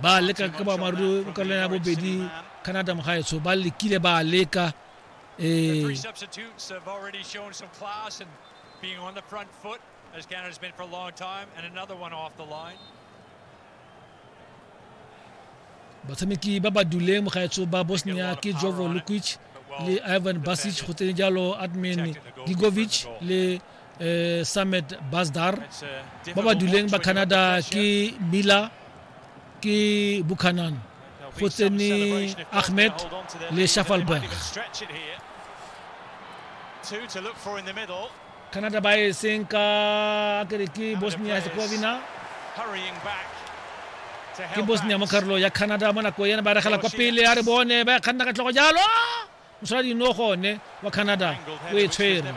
ba leka ka boammaaruri ka lena bobedi canada mogaetsho ba lekile ba leka um being on the front foot as Canada's been for a long time, and another one off the line. batshameki ba ba duleng mogaetso ba bosnia ke jovo lukic le ivan basic go tsene jalo admin digovic le eh, Samet Basdar ba ba duleng ba Canada ke Mila ke Buchanan go tsene Ahmed le Shafalberg Canada ba e seng ka kere ke Bosnia Herzegovina ke Bosnia mo karolo ya Canada mo nako ena ba regela kwa pele a re bone ba kganna ka tlhogo jalo mosaladi no gone wa canada o e tshwere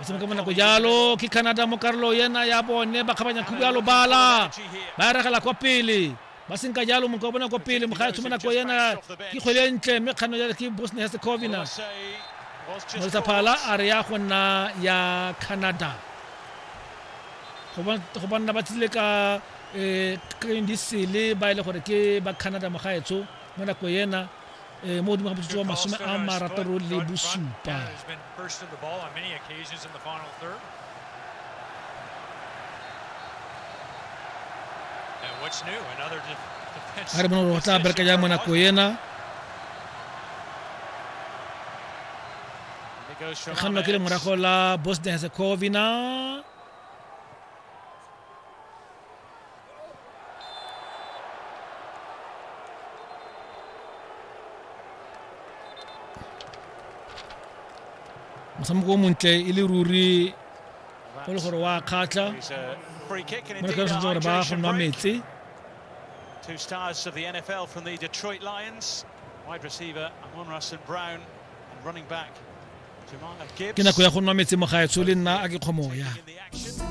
e tshameka mo nako jalo ke canada mo karolo yena ya bone ba kgabanya khubu ya lobala ba eregela kwa pele ba senka jalo monka bona kwa pele moga tsho mo nako yena ke kgwele e ntle mme kgano jalo ke bosnia herzegovina molisa phala a re ya go nna ya canada go banna ba tsile ka um eh, green diesel ba e le gore ke ba canada mogaetsho mo nako ena eh, mo godimo ga motsotso wa masome a marataro le bosupa ga re bona gore go tla bereka jang mo nako ena kgannwa ke le morago la bosnia herzegovina motshameko o montle e le ruri go le gore wa kgatlha It's a free kick and mo re indeed ka sentse gore ba go hydration nwa break. metse Two stars of the NFL from the Detroit Lions, wide receiver Amon Russell Brown and running back Jamar Gibbs. ke nako ya go nwa metse mogaetsho le nna a ke kgomoya In the action.